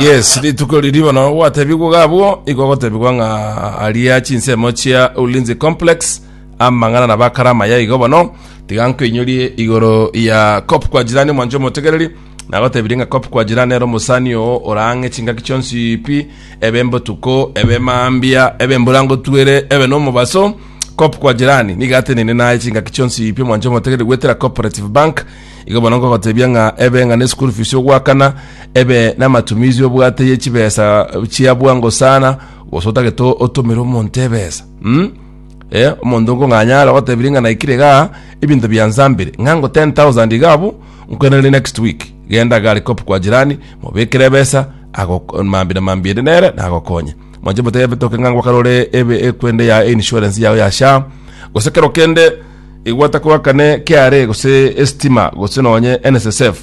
Yes, rituko riri bono gwatebigwa gabwo igo gotebigwa ng'a aria chinsemo chia Ulinzi Complex amang'ana na bakarama ya igo bono tiga nkoinyorie igoro ya Cop kwa jirani mwancho omotegereri nagotebirie ng'a Cop kwa jirani ero mosani oo orang'e chingaki chionsi pi ebe mbotuko ebe mambia ebe mbura ngotwere ebe nomobaso Cop kwa jirani niga atenene naye chingaki chionsi pi mwancho omotegereri gwetera cooperative bank Igo bono nkogotebia ng'a ebe ng'a n'eschool fees ogoakana, ebe n'amatumizi obwate ye chibesa chia bwango sana, gose otagete otomere omonto ebesa. Mm? Eh, omonto nkong'anya are ogotebirie ng'a naikire igaa, ebinto biansambire, ng'a ngo 10,000 iga abwo, nkwenereri next week, genda gari cop kwa jirani, mobekere ebesa, agoko- mambi na mambi ende nere, nagokonye. Mwanche motebe toke ng'a ngokarore ebe ekwende ya insurance yao ya SHA, gose kero kende Igwa takoakane KRA gose esitima gose nonye NSSF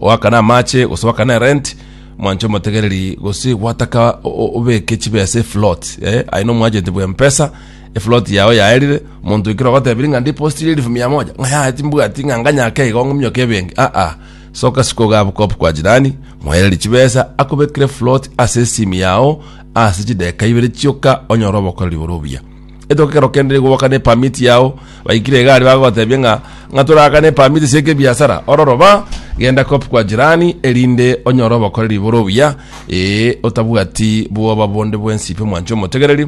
oakane amache gose oakane erent mwanche omotegereri gose gwataka o- o- obeke chibesa eflot eh? aye nomwagenti bwa mpesa eflot yao yaerire monto ekero ogotebiri ng'a ndipositirie elifu mia moja ng'a yaya timbwati ng'a nganyake igo ng'umioke ebenki aa soka siko gabu kop kwa jirani mwaereri chibesa akobekire flot ase esimi yao ase chideka ibere chioka onyore obokoreri bore obuya Etoke ekero kende nigo gwakana epamit yao baikire egari bagotebia ng'a ng'a torakane epamit ase ekebiasara ororo ba genda kop kwa jirani erinde onyore obokoreri bore obuya ee otabwati bwoba bonde bwensi pi omwanche omotegereri